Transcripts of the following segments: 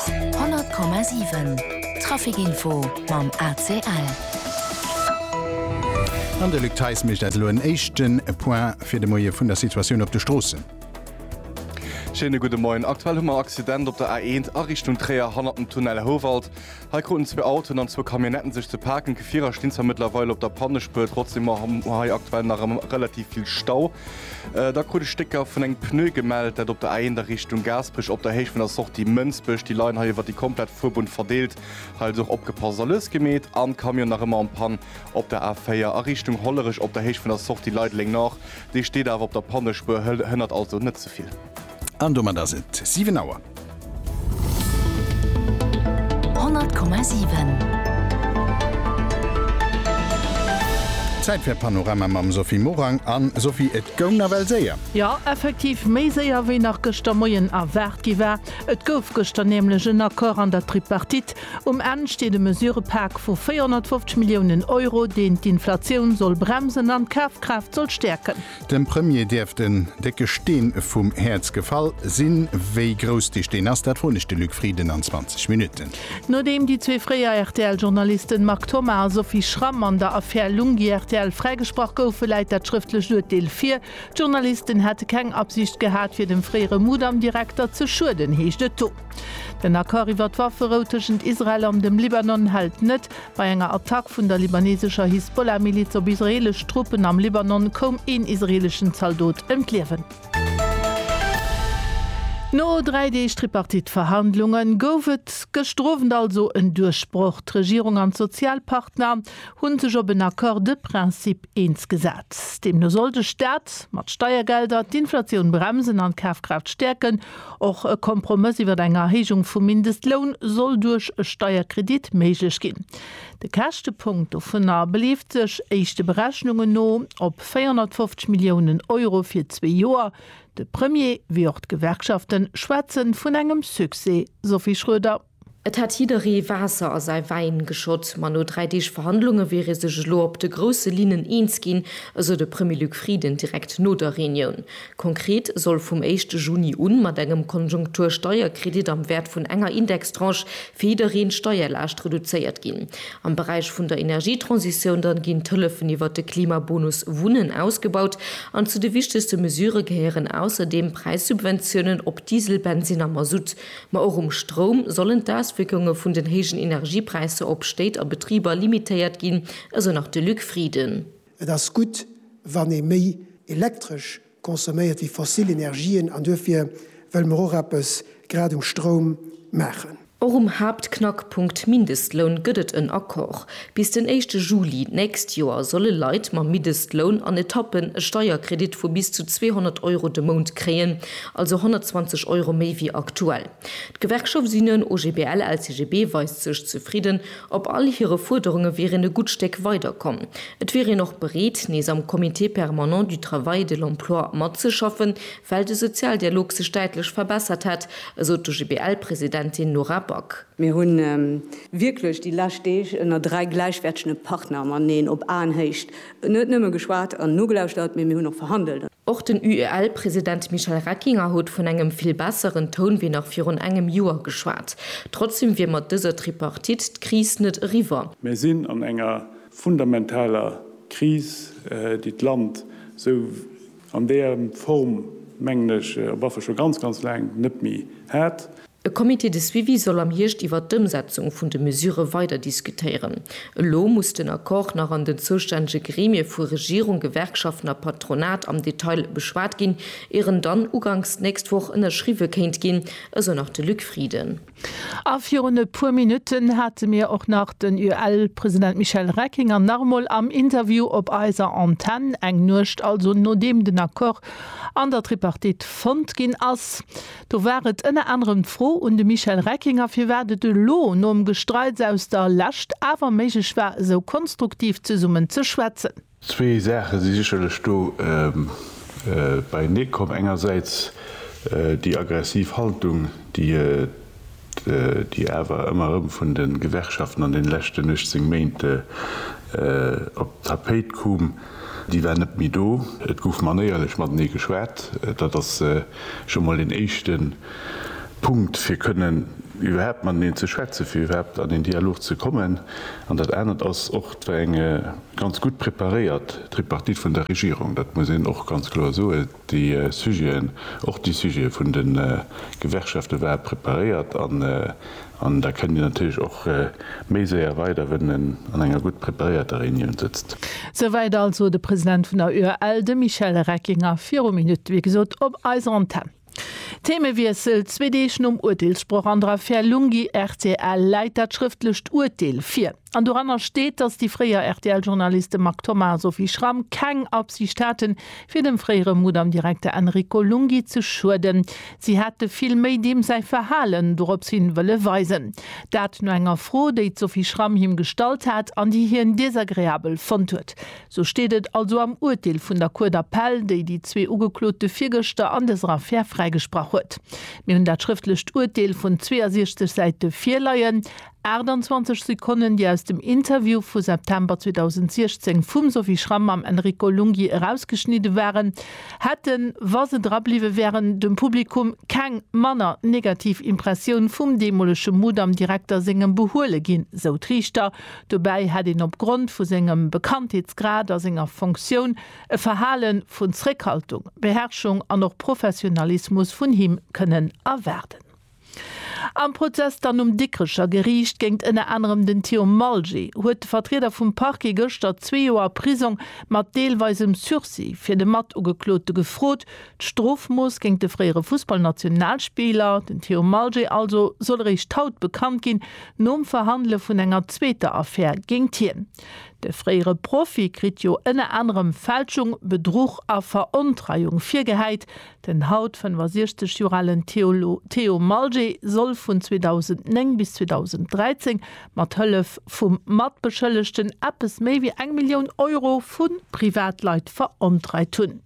100,7 Trafic Info mam ACL. An de Luc Theis mécht eis elo en éischte Point fir de Moie vun der Situatioun op de Stroossen. Schéine gudde Moien. Aktuell hu mer Accident op der A1 a Richtung Tréier hanner dem Tunnel Houwald. Hei kruten zwee Autoen an zwou Camionnetten sech ze paken. Gefierer stinn zwar mëttlerweil op der Pannespuer, trotzdeem hu mer hei aktuell nach ëmmer relativ vill Stau. Da krut ech Stécker vun engem Pneu gemellt, dat op der A1 a Richtung Gaasperech op der Héicht vun der Sortie Mënsbech. Déi leien hei iwwert déi komplett Fuerbunn verdeelt. Hei also och opgepasst a lues gemeet. An Camion nach ëmmer en Panne op der A4 a Richtung Hollerech op der Héicht vun der Sortie Leideleng Nord. Dee steet awer op der Pannespuer, hënnert also net ze vill. An domat ass et 7 Auer. Zäit fir Panorama mam Sophie Morang an Sophie et goung nawell séier. Jo effektiv, méi séier wéi nach gëschter Moien erwaart gi war. Et gouf gëschter nämlech en Accord an der Tripartite. Um Enn steet e Mesurepak vu 450 Milliounen Euro, deen d'Inflatioun soll bremsen an d'Kafkraaft soll stäerken. Dem Premier dierft en décke Steen vum Häerz gefall sinn. Wéi grouss dee Steen ass, dat froen ech de Luc Frieden an 20 Minutten. Nodeem déi zwee fréier RTL-Journalisten Marc Thoma a Sophie Schramm an der Affär Lunghi rtl fräigesprach goufen, läit dat schrëftlecht Urteel vir. D'Journalisten hätte keng Absicht gehat, fir dem fréiere Mudam-Direkter ze schueden, heescht et do. Den Accord iwwer d'Wafferou tëschent Israel an dem Libanon hält net. Bei enger Attack vun der libanesescher Hisbollah-Miliz op israeelesch Truppen am Libanon koum een israeeleschen Zaldot ëm d'Liewen. No dräi Deeg Tripartite-Verhandlunge gouf et gëschter Owend also en Duerchbroch, D'Regierung an d'Sozialpartner hu sech op en Accord de principe eens gesat. Deemno soll de Staat mat Steiergelder d'Inflatioun bremsen an d'Kafkraaft stäerken. Och e Kompromëss iwwer eng Erhéijung vum Mindestloun soll duerch e Steierkredit méiglech ginn. De Käschtepunkt dovunner beleeft sech, éischte Berechnungen no, op 450 Milliounen Euro fir zwee Joer. De Premier wéi och d'Gewerkschafte schwätze vun engem Succès, Sophie Schroeder. Et hätt jidderee Waasser a säi Wäin geschott, ma no dräi Deeg Verhandlunge wier ee sech elo op de grousse Linnen eens ginn, esou de Premier Luc Frieden direkt no der Reunioun. Konkret soll vum éischte Juni un mat engem Konjunktur-Steierkredit am Wäert vun enger Indextranche fir jiddereen d'Steierlaascht reduzéiert ginn. Am Beräich vun der Energietransitioun dann ginn d'Hëllefen iwwert de Klimabonus Wunnen ausgebaut an zu de wichtegste Mesurë gehéieren ausserdeem Präissubventiounen op Diesel, Bensinn a Masutt. Ma och um Stroum sollen d'Auswierkunge vun den héijen Energiepräisser op Stéit a Betriber limitéiert ginn, esou nach de Luc Frieden. Et ass gutt, wann ee méi Elektresch consomméiert wéi fossil Energien an duerfir wëlle mer och eppes grad um Stroum maachen. Och um Haaptknackpunkt Mindestloun gëtt et en Accord. Bis den éischte Juli d'nächst Joer solle Leit mam Middestloun an Etappen e Steierkredit vu bis zu 200 Euro de Mount kréien, also 120 Euro méi wéi aktuell. D'Gewerkschaft Synen OGBL-LCGB weist sech zefridden. Op all hire Fuerderunge wier een e gutt Stéck weider komm. Et wier een och bereet, nees am Comité permanent du travail et de l'emploi matzeschaffen, well de Sozialdialog sech däitlech verbessert hätt, esou d'OGBL-Presidentin Nora Back. Mir hu wierklech déi lescht Deeg ënner dräi gläichwäertege Partner mateneen op Aenhéicht net nëmme geschwat an nogelauschtert, mee mir hunn och verhandelt. Och den UEL-President Michel Reckinger huet vun engem vill besseren Toun wéi nach virun engem Joer geschwat. Trotzdeem wier mat dëser Tripartite d'Kris net eriwwer. Mir sinn an enger fundamentaler Kris, déi d'Land esou an där Form, mengen ech, op affer scho ganz, ganz laang net méi hat. E Comité de suivi soll am Hierscht iwwert d'Ëmsetzung vun de Mesure weider diskutéieren. Elo muss den Accord nach an den zoustännege Gremie vu Regierung, Gewerkschaften a Patronat am Detail beschwat ginn, ier en dann uganks d'nächst Woch ënnerschriwwe kéint ginn, esou nach de Luc Frieden. A virun e puer Minutten hate mir och nach den UEL-President Michel Reckinger nach emol am Interview op eiser Antenn, eng Nuecht also nodeem den Accord an der Tripartite fonnt ginn ass. Do war et ënner anerem d'Fro un de Michel Reckinger, firwat et elo nom Gestreits aus der Lescht awer méiglech war, esou konstruktiv zesummen ze schwätzen. Zwee Saache si sécherlech do beienee komm. Engersäits déi aggressiv Haltung, déi. déi awer ëmmer erëm vun de Gewerkschaften an deene leschten 18 Méint op d'Tapéit koom, déi war net méi do. Et gouf manéierlech matenee geschwat. Dat ass scho emol een éischte Punkt, fir kënnen iwwerhaapt mateneen ze schwätzen, fir iwwerhaapt an een Dialog ze kommen. An dat anert ass och, et war eng ganz gutt preparéiert Tripartite vun der Regierung. Dat muss een och ganz kloer soen. Déi Sujeten, och déi Sujete vun de Gewerkschafte ware preparéiert an an da kënnt Dir natierlech och méi séier weider, wann en an enger gutt preparéierter Reunioun sëtzt. Souwäit also de President vun der UEL, de Michel Reckinger, viru Minutte wéi gesot op eiser Antenn. Themewiessel, Zwee Deeg nom Urteelssproch an der Affär Lunghi-Rtl läit dat schrëftlecht Urteel vir. An doranner steet, datt déi fréier RTL-Journaliste Marc Thoma a Sophie Schram keng Absicht haten, fir dem fréiere Mudam-Direkter Enrico Lunghi ze schueden. Si hätte vill méi deem säi Verhalen dorops hin wëlle weisen. Dat no enger Fro, déi d'Sophie Schram him gestallt hat an déi hien desagreabel fonnt huet. Sou steet et also am Urteel vun der Cour d'appel, déi déi zwee Ugeklote virgëschter an dëser Affär fräigesprach huet. Mir hunn dat schrëftlecht Urteel vun 62 Säite virleien. 28 Sekonnen, déi aus dem Interview vu September 2016 vum Sophie Schram mam Enrico Lunghi erausgeschnidde waren, hätten, wa se drabliwwe wären, dem Publikum keng manner negativ Impressioun vum deemolege Mudam-Direkter sengem behuele ginn, sou d'Riichter. Dobäi hätt een op Grond vu sengem Bekanntheetsgrad a senger Fonctioun e Verhale vun Zréckhaltung, Beherrschung an och Professionalismus vun him kënnen erwaarden. Am Prozess dann um Dikrecher Geriicht géingt ënner anerem den Theo Malgé huet de Vertrieder vum Parquet gëschter zwee Joer Prisong mat deelweisem Sursis fir de Matugeklote gefrot. D'Strofmooss géingt de fréiere Fussballnationalspiller, den Theo Malgé also, soll eréischt haut bekannt ginn, nom Verhandele vun enger zweeter Affär géingt hien. De fréiere Profi kritt jo ënner anerem Fälschung, Bedruch a Verontreiung virgehäit. Den haut 65 Joer alen Theo Malgé soll vun 2009 bis 2013 mat Hëllef vum Matbeschëllegten eppes méi wéi eng Millioun Euro vu Privatleit verontreit hunn.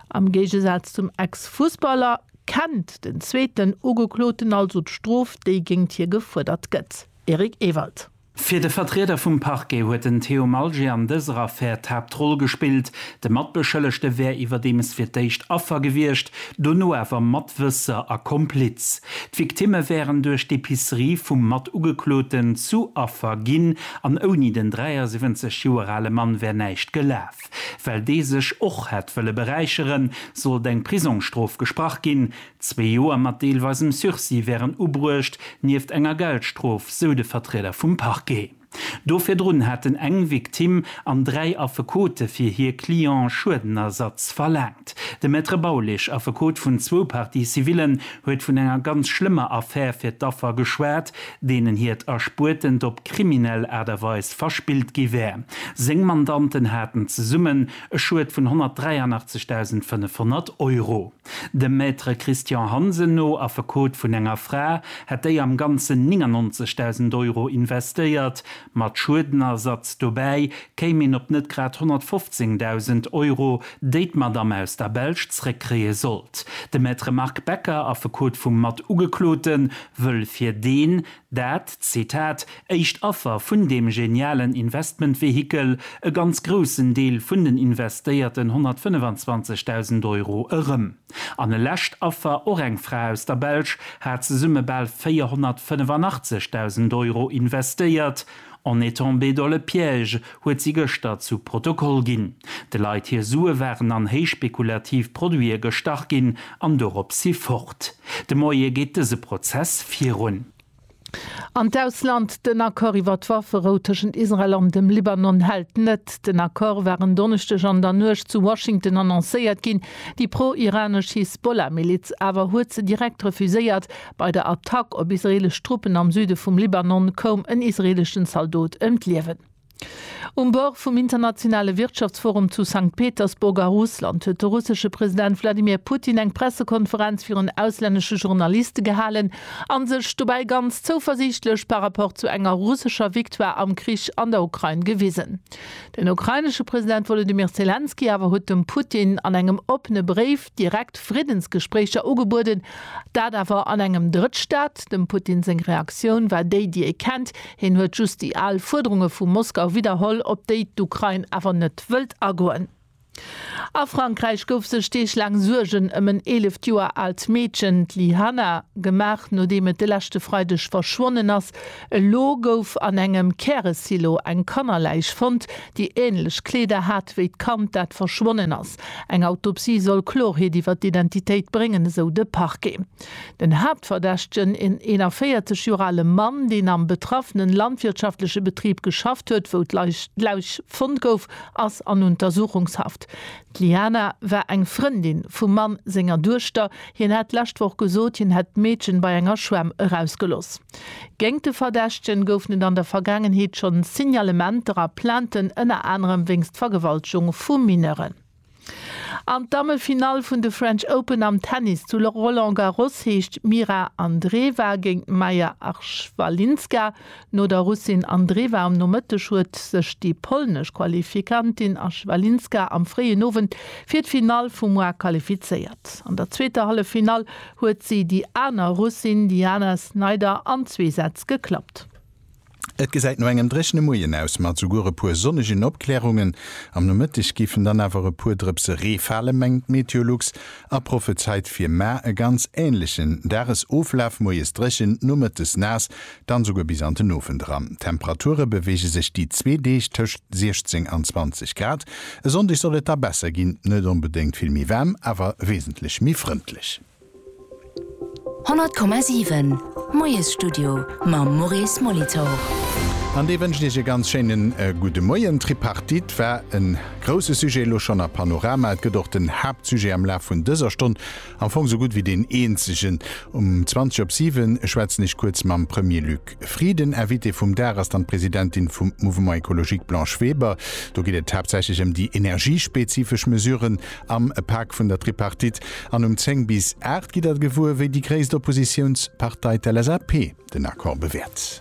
Am Géigesaz zum Ex-Fussballer kennt den zweeten Ugekloten also d'Strof, déi géingt hie gefuerdert gëtt. Eric Ewald. Fir de Vertrieder vum Parquet huet den Theo Malger an dëser Affär d'Haaptroll gespillt. De Matbeschëllegte wär iwwerdeems fir d'éischt Affer gewiescht, dono awer Matwësser a Kompliz. D'Victimme wären duerch d'Epicerie vum Matugekloten zu Affer ginn an ouni den 73 Joer ale Mann wär näischt gelaf. Well dee sech och hätt wëlle beräicheren, sollt eng Prisongsstrof gesprach ginn, Zwee Joer mat deelweisem Sursis wären ubruecht, nieft enger Geldstrof, sou de Vertrieder vum Parquet. Do virdrun hätten eng Victime an dräi Affekote fir hir Client Schuedenersatz verlaangt. De Maître Baulig, Affekot vun zwou Parties civillen, huet vun enger ganz schlëmmer Affär fir d'Affer geschwat, deenen hiert Erspuertent op kriminell Aart a Weis verspillt gi wär. Seng Mandanten haten zesummen e Schued vun 183.500 Euro. Dem Maître Christian Hansen no, Affekot vun enger Fra, hätt déi am Ganzen 99.000 Euro investéiert. Mat Schuedenersatz dobäi kéim een op net grad 115.000 Euro, déi d'Madame aus der Belsch zréckkréie sollt. De Maître Marc Becker, Affekot vum Mat-Ugeklote, wëll fir deen, Dat, Zitat, éischt Affer vun deem genialen Investmentvehikel, e ganz groussen Deel vun den investéierten 125.000 Euro erëm. An e lescht Affer, och eng Fra aus der Belsch, hat zesumme bal 485.000 Euro investéiert. On est tombé dans le piège, huet si gëschter zu Protokoll ginn. De Leit hir Sue waren an héichspekulativ Produite gestach ginn an dorop si fort. De Moie geet dëse Prozess virun. An d'Ausland, Den Accord iwwer d'Wafferou tëschent Israel an dem Libanon hält net. Den Accord war en Donneschdeg an der Nuecht zu Washington annoncéiert ginn. Déi pro-iranesch Hisbollah-Miliz awer huet se direkt refuséiert Bei der Attack op israeelesch Truppen am Süde vum Libanon koum en israeeleschen Zaldot ëm d'Liewen. Um Bord vum internationale Wirtschaftsforum zu Sankt Petersburg a Russland huet de russesche President Wladimir Putin eng Pressekonferenz virun auslännesche Journaliste gehalen a sech dobäi ganz zouversiichtlech par rapport zu enger russescher Victoire am Krich an der Ukrain gewisen. Den ukrainesche President Wolodymyr Selenskyj awer huet dem Putin an engem oppene Bréif, direkt Friddensgespréicher ugebueden, dat awer an engem Drëttstaat. Dem Putin seng Reaktioun war déi, déi ee kennt, hien huet just déi al Fuerderunge vu Moskau widderholl, op déi d'Ukrain awer net wëllt agoen. A Frankräich gouf sech Deeg laang Suergen ëm en eeleft Joer aalt Meedchen, d'Lyhanna, gemaach, nodeem et de leschte Freideg verschwonnen ass. Elo gouf an engem Käresilo eng Kannerläich fonnt, déi änlech Kleeder hat wéi d'Kand, dat verschwonnen ass. Eng Autopsie soll Klorheet iwwer d'Identitéit bréngen, esou de Parquet. Den Haaptverdächtegen, en 41 Joer ale Mann, deen am betraffene landwirtschaftleche Betrib geschafft huet, wou d'Läich fonnt gouf, ass an Untersuchungshaft. D'Liana war eng Frëndin vum Mann senger Duechter. Hien hat d'lescht Woch gesot, hien hätt d'Meedchen bei enger Schwämm erausgelooss. Géint de Verdächtegen goufen et an der Vergaangenheet schonn Signalementer a Plainten, ënner anerem wéinst Vergewaltegung vu Mineuren. An d'Damme-Finall vun de French Open am Tennis zu Roland Garros heescht Mira Andreeva géint Maja Archwalinska. No der Russin Andreeva um Nomëtteg huet sech déi polnesch Qualifikantin Archwalinska am fréien Owend fir d'Finall vum Mois qualifizéiert. An der zweeter Halleffinall Huet si déi aner Russin Diana Snyder an zwee Sätz geklappt. Et gesäit no engem dréchene Moien aus, mat esouguer e puer sonnegen Opklärungen. Am Nomëtteg géifen dann awer e puer Drëpse Ree falen, mengt d'Meteolux a prophezeit fir mar e ganz änlechen Dagesoflaf, moies dréchen, nomëttes naass, dann esouguer bis an den Owend eran. D'Temperature beweege sech déi zwee Deeg tëscht 16 an 20 Grad. E Sonndeg soll et da besser ginn, net onbedéngt vill méi waarm, awer wesentlech méi frëndlech. 100,7 Moiesstudio mam Maurice Molitor. An dee wënscht Iech e ganz schéine gudde Moien. D'Tripartite war e grousse Sujet elo schonn a Panorama. Et gëtt och den Haaptsujet am Laf vun dëser Stonn. Am Fong sou gutt wéi deen eenzegen. Um 20 op 7 schwätzen ech kuerz mam Premier Luc Frieden. Invitée vum Dag ass dann d'Presidentin vum Mouvement Ecologique Blanche Weber. Do geet et haaptsächlech ëm déi energiespezifesch Mesuren am Pak vun der Tripartite. An um 10 bis 8 gitt Der gewuer, wéi déi gréisst Oppositiounspartei, d'LSAP, den Accord bewäert.